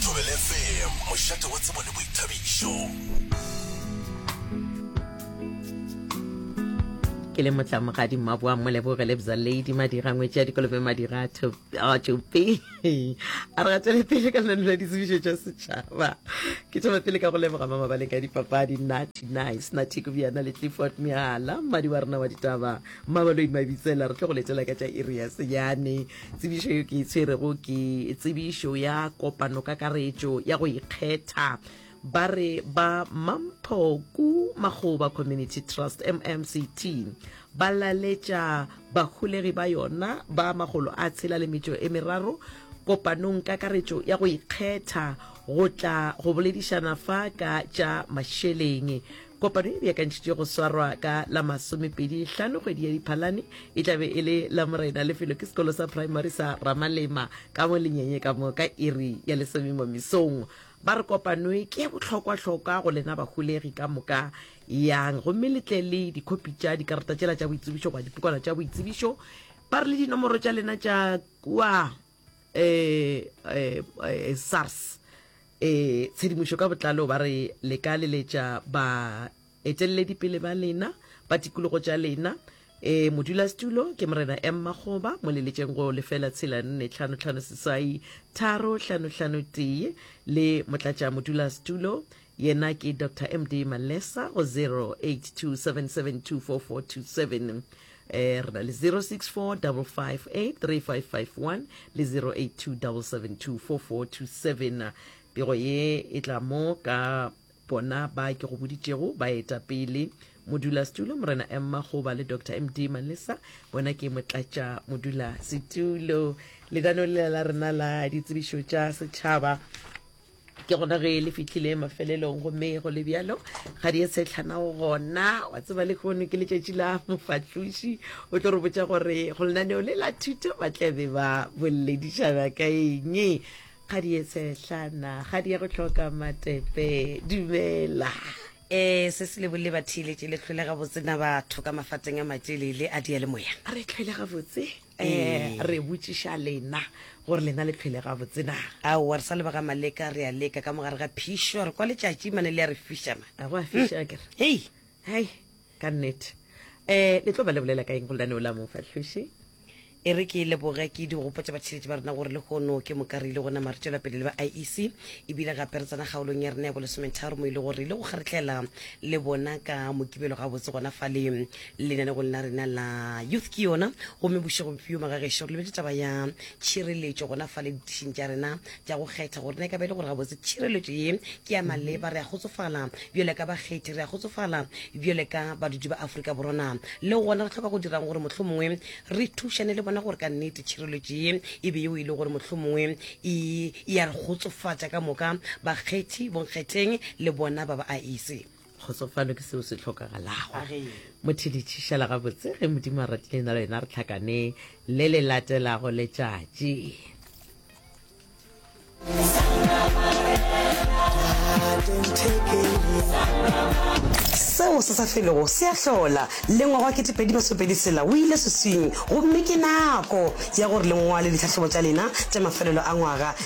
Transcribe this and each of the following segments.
Thobela FM, mošate wa tsebo le boithabišo. ke le motlamogadi mmaboa moleboge le bza lady madira ngwetse ya dikolobe madira a tšope a re ga tswele pele ka lenano la ditsebišo tša setšhaba ke thoma pele ka go leboga mama ba leka dipapadi nati nice nati kobjana le tlefort meala mmadi wa rena wa ditaba mmabaloi mabitsela re tlo go letela ka tša iri ya senyane Tsebišo yeo ke e tshwerego ke tsebišo ya kopanokakaretšo ya go ikgetha, ba re ba Mamphoku Makgoba Community Trust, MMCT, ba laletša baholegi ba yona ba makgolo a tshela le metšo e meraro kopanongkakaretšo ya go ikgetha go tla go boledišana fa ka tša mašeleng. Kopano e beakantšhitšwe go swarwa ka la masomepedi hlano kgwedi ya Diphalane e tla be e le la Morena. Lefelo ke sekolo sa praemari sa Ramalema ka mo Lenyenye ka mo ka iri ya lesome mo mesong. Ba re kopanoe ke ya bohlokwa-hlokwa go lena baholegi ka moka yang gomme le tle le dikhopi tša dikarata tšela tša boitsebišo goba dipokwana tša boitsebišo. Ba re le dinomoro tša lena tša kua eh, eh, eh, sars eh, tshedimošo ka botlalo ba re le ka leletša ba eteleledi pele ba lena ba tikologo tša lena e modulasetulo ke morena m magoba mo leletšeng go lefela tshela nne tlhano tlhano seswai tharo tlhano tlhano tee le motlatša modulasetulo yena ke dr md malesa go 0827724427 Eh, re na le 0645583551 le 0827724427 pego ye e tla mo ka bona ba ke go boditšego ba eta pele modula setulo morena emma goba le dr md malesa bona ke motlatša modula setulo ledanong lela la rena la ditsebišo tša setšhaba ke gona ge le fitlhile mafelelong gomme go le bjalo ga di e setlhanago gona wa tseba le kgono ke letšatši la mofatloši o tlo re botša gore go lenaneo le la thuto ba tlabe ba boledišana ka eng ga di e setlhana ga di ya go tlhoka matepe dumela um se se lebole ba theeletše le tlholega botsena batho ka mafateng a matšelele a diyalemoya re tlholega botse um re botšiša lena gore lena le phele ga botsena aowa re sa lebaka maleka re a leka ka mogare ga phišo re kwa letšatši mane le ya re fišama go a fiša ke re hei hai ka nnete um le tlo ba le bolela ka eng go lenaneo la mofahloši e re ke leboge ke di gopotsa batšheletši ba rena gore le gono ke moka re ile gona mare tšwela pele le ba iec ebile gape re tsena kgaolong ya rena ya bolesometharo mo e le gore re ile go kgaretlela le bona ka mokibelo gabotse gona fale Lenanegong la rena la Youth ke Yona gomme Bošego Bopio Magagešo, re lebetše taba ya tšhireletšo gona fale ditišing tša rena tša go kgetha gore na e ka ba e le gore gabotse tšhireletšo ye ke ya maleba. Re a kgotsofala bjale ka bakgethi, re a kgotsofala bjale ka badudi ba Afrika Borwa. Na le gona re hloka go dira'ng gore mohlomongwe re thušane le bona gore ka nnete tšhireletšo ye e be yeo e le gore mohlomongwe e, e a re kgotsofatša ka moka? Bakgethi, bonkgetheng le bona ba ba aise. kgotsofalo ke seo se tlhokagalago motho le tšhišela gabotse ge modimo a ratile na le wena re tlhakane le le latelago letšatši seo se sa felego se a hlola lengwaga wa ketepedi masopedi sela o ile seswing gomme ke nako ya gore lengwale ditlhahlobo tša lena tša mafelelo a ngwaga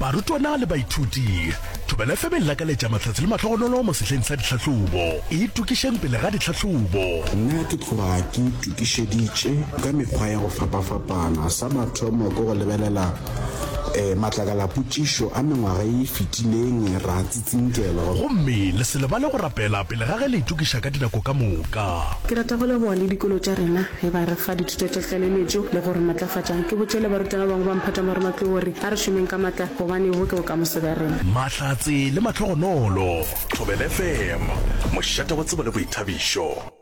barutwana le baithuti thobela fm e lakaletša mahlatse le mahlogonolo mo sehleng sa ditlhahlobo e tokišeng pele ga ditlhahlobo nna ke tloga ke itokišeditše ka mekgwa ya go fapafapana sa mathomo ke go lebelela um matlakala potšišo a mengwaga e fetileng ra tsitsinkela gomme le se lebale go rapela pele ga ge le itokiša ka dinako ka moka ke rata go leboga le dikolo tša rena Ge ba re fa dithuto tša tlaleletšo le go re matlafatša, ke botše le baruta ba bangwe ba Mphatamoroma ke go re, A re šomeng ka matla, gobane bo ke bokamoso bja rena. Mahlatse le mahlogonolo. Thobela FM, mošate wa tsebo le boithabišo.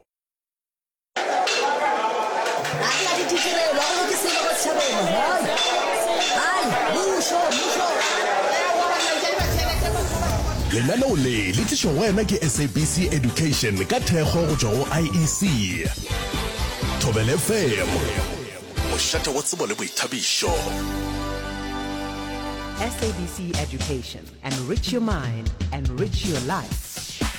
Lenaneo le le tlišwa go wena ke SABC Education ka thekgo go tšwa go IEC. Thobele FM, mošate wa tsebo le boithabišo. SABC Education. Enrich your mind, enrich your life.